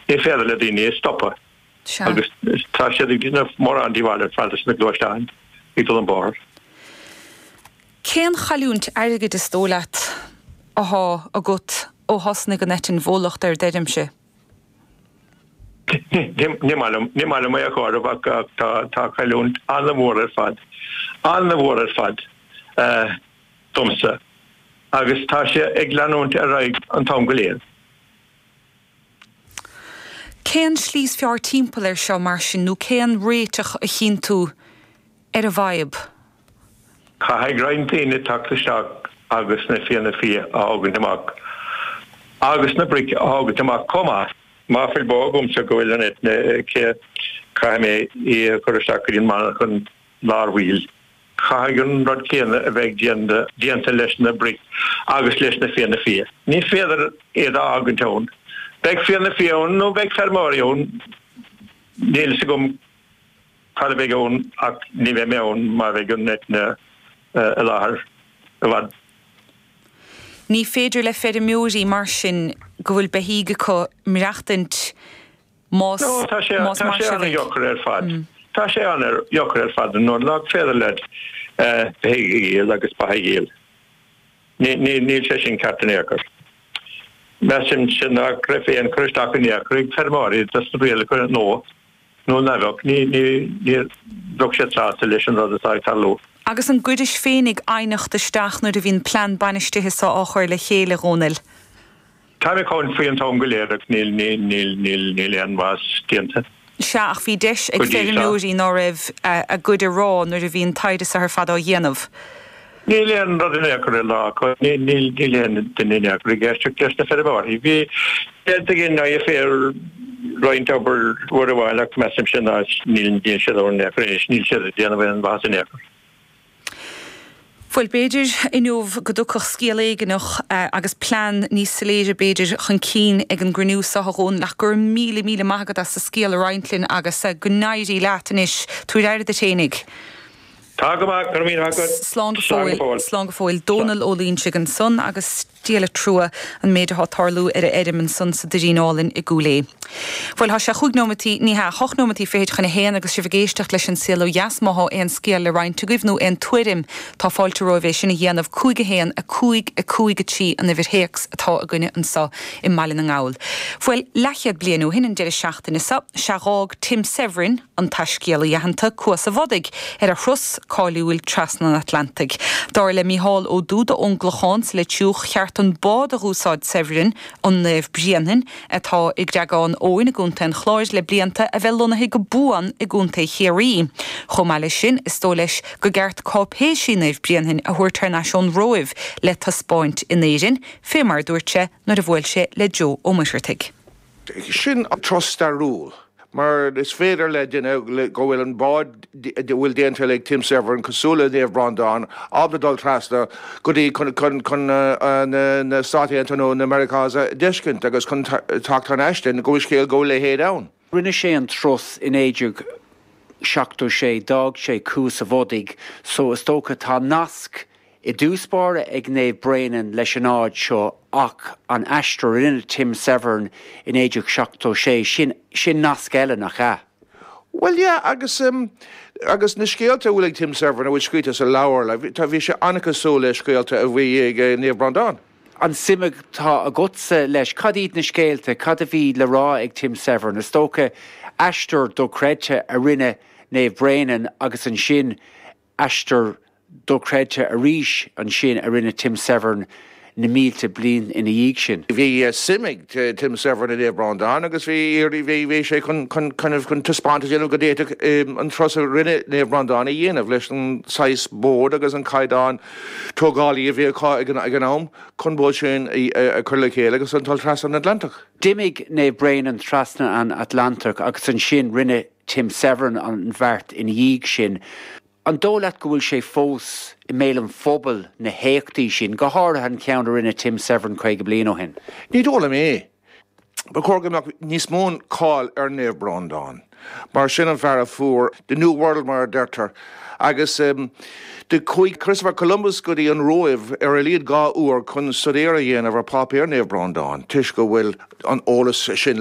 Ní féidir le daoine é stopadh. Agus tá siad ag déanamh mórán díobhála ar fad leis na gluaisteáin ag dul an bóthar. Cén chailliúint airgid is dóigh leat athá agat ó thosnaigh an eitinn bhólacht ar d'fheirmse? Ní maith liom, ní maith liom é a chomhaireamh ach tá, tá cailliúint an-mhór ar fad, an-mhór ar fad domsa. Agus tá sé ag leanúint ar aghaidh an t-am go léir. Cén slí is fearr timpeall air seo mar sin nó cén réiteach a chíonn tú ar an bhfadhb? Caithfidh roinnt daoine teacht isteach agus na fianna fia a thógaint amach agus na bric a thógaint amach chomh maith. Más fuil bó agamsa go bhfuil an eitinn aici caithfidh mé í a chur isteach go dtí an monarchan láithreach baill. Caithfidh an rud céanna a bheith déanta leis na bric agus leis na fianna fia. Ní féidir iad a fhágaint ann. Beidh fianna fia ann nó beidh feirmeoirí ann. Níl a fhios agam cad a bheidh ann ach ní bheidh mé ann má bheidh an eitinn i láthair i bhfad. Ní féidir le feirmeoirí mar sin, go bhfuil beithígh acu, maireachtaint Más mar sin a bheidh. Tá sé an-dheacair ar fad. Nuair nach féidir leat bheith ag díol agus ba a dhíol. Níl sé sin ceart in aon chor. Measaimse nach raibh aon chur isteach in aon chor ag feirmeoirí do na rialacha nó ní bheadh siad sásta leis an rud atá ag tarlú. Agus an gcuiris féinig aighneacht isteach nuair a bhí an plean bainistithe so á chur le chéile, a Dhónaill? Táim ag gearán faoi an t-am go léir agus níl, níl, níl, níl, níl aon mhaitheas déanta. Sea, ach bhí deis ag feirmeoirí ná raibh a gcuid a rá nuair a bhí an taighde so ar fad á dhéanamh. Níl aon rud in aon chor le rá acu, níl, níl, níl aon duine in aon chor ag éisteacht leis na feirmeoirí. Bhí, déanta ag an IFA roinnt obair uair amháin ach measaimse ná níl, níl siad ann in aon chor anois, níl siad ag déanamh aon mhaitheas in aon chor. Bhuel, b'fhéidir inniu go dtiocfadh scéal éigin agus plean níos soiléire b'fhéidir chun cinn ag an gcruinniú seo a Dhónaill ach go raibh míle, míle maith agat as do scéal a roinnt linn agus go n-éirí leat anois. Tabhair aire duit fhéinig. Tá go maith, go raibh míle maith agat. Slán go fóill. Slán go fóill. Dónall Ó Loingsigh ansan agus. Díol trua, an méid athá ag tarlú ar a fheirm ansan sa Doirín Álainn i gCúil Aodh. Bhuel, thá sé cúig nóimeataí, ní hea, hocht nóimeataí fichid chun a haon agus sibh ag éisteacht leis An Saol Ó Dheas má thá aon scéal le roinnt agaibh nó aon tuairim, tá fáilte romhaibh é sin a dhéanamh, 'Cúig a hAon a Cúig a Cúig a Trí' an uimhir théacs atá againne anso i mBaile na nGall. Bhuel, leathchéad bliain ó shin an deireadh seachtaine so, sea dh'fhág Tim Severin, an taiscéalaí aitheanta Cuas a' Bhodaigh ar a thuras cáiliúil trasna an Atlantaigh. Dar le Mícheál Ó Dúda ón gClochán sa Leitriúch, cheart an bád a dh'úsáid Severin, an Naomh Bréanainn, atá i gCreagán Eoin i gContae an Chláir le blianta, a bheith lonnaithe go buan i gContae Chiarraí. Chomh maith leis sin, is dóigh leis gur cheart cáipéisí Naomh Bréanainn a thabhairt thar n-ais ón Róimh le taispeáint in Éirinn, fé mar a dúirt sé nuair a bhuail sé le Joe Ó Muircheartaigh. sin turas stairiúil mar is féidir le duine go bhfuil an bád a bhfuil déanta ag Tim Severin cosúil le Naomh Breandán ábalta dul trasna go dtí chun na Stát Aontaithe nó na Meiriceá a d'fheiscint agus chun teacht chun a thuiscint go bhfuil scéal go bhfuil a leithéid ann. Rinne sé an turas i 1976, d'fhág sé Cuas a' Bhodaigh so is dócha tá nasc I dtús báire ag Naomh Bréanainn leis an áit seo ach an aistear a rinne Tim Severin i 1976, sin, sin nasc eile, nach ea? Bhuel, yeah, agus, agus na scéalta a bhfuil ag Tim Severin, a bhfuil scríte sa leabhar, like, tá, bhí sé an-cosúil le scéalta a bhí ag Naomh Breandán. An suim atá agatsa leis, cad iad na scéalta, cad a bhí le rá ag Tim Severn? Is dócha aistear dochreidte a rinne Naomh Bréanainn agus ansin, Aistear dochreidte arís ansin a rinne Tim Severin na mílte bliain ina dhiaidh sin. Bhí suim ag Tim Severin i Naomh Breandán agus bhí sé chun taispeáint a dhéanamh go d'fhéadfadh an turas a rinne Naomh Breandán a dhéanamh leis an saghas bád agus an caighdeán tógála a bhí acu ag an am chun bád sin a chur le chéile agus a dhul trasna an Atlantach. D'imigh Naomh Bréanainn trasna an Atlantach agus ansin rinne Tim Severin an bheart ina dhiaidh sin. An dóigh leat go bhfuil sé fós i mbéal an phobail, na héachtaí sin, go háirithe an ceann a rinne Tim Severin 50 bliain ó shin? Ní dóigh liom é. Ba chóir go mbeadh níos mó cáil ar Naomh Breandán, mar sin an fear a fuair the new world mar a deirtear agus do chuaigh Christopher Columbus go dtí an Róimh ar a laghad dhá uair chun staidéar a dhéanamh ar pháipéir Naomh Breandán toisc go bhfuil an eolas sin